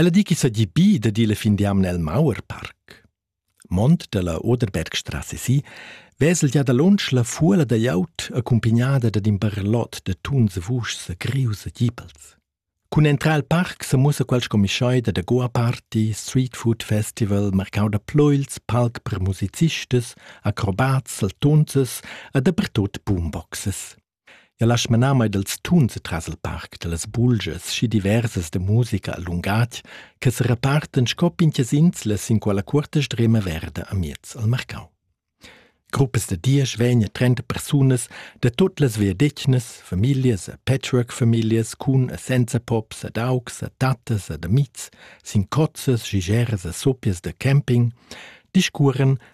Ella di ch'i seigi bi da dir la fin d'jamna el Mauer Parc. Mont dalla Oderbergstrasse si vesel gia dalunsch la fuola da gliaud accumpignada dad in barlot da tuns e vuschs e grius e gipels. Cun entrar al parc se mussa quel scomischai da Goa Party, Street Food Festival, marcau da ploils, palc per musicistas, acrobats, saltunzas e dapertut boomboxes. Jau lasch manar mei dals tuns tras il parc da las bulgias schi diversas da musica e lungatg che serepartan sco pintgas inslas sin quella cuorta strema verda amiez al marcau. Gruppas da diesch vegn a trenta persunas da tut las viadetgnas, famiglias e patchwork-famiglias cun e senza pops ad augs, a tattas ed amids, sin cozzas, gigeras e soppias da camping, discuoran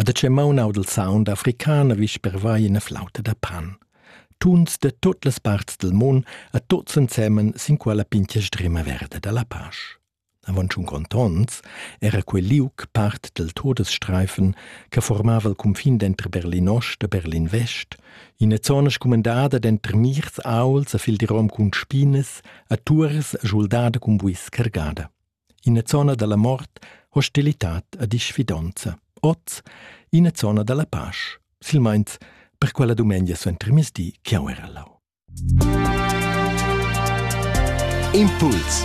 A da che maun aud il sound african ha vis pervai ina flauta da pan. Tuns da tut las parts del mun a tuts ensemen sin quella pintga sdrima verda da la pasch. Avon tschun contonts era quel liuc part del Todesstreifen che formava il cunfin dentro Berlin Ost e Berlin West, ina zona scumandada dentro mirs auls a fil di rom cun spinas, a tuars e schuldada cun buis cargada. ina zona dalla mort, hostilitad e disfidonza. Oz ina zona dalla pasch, silmeins per quella dumengia suentermiezdi che jau era lau. Impuls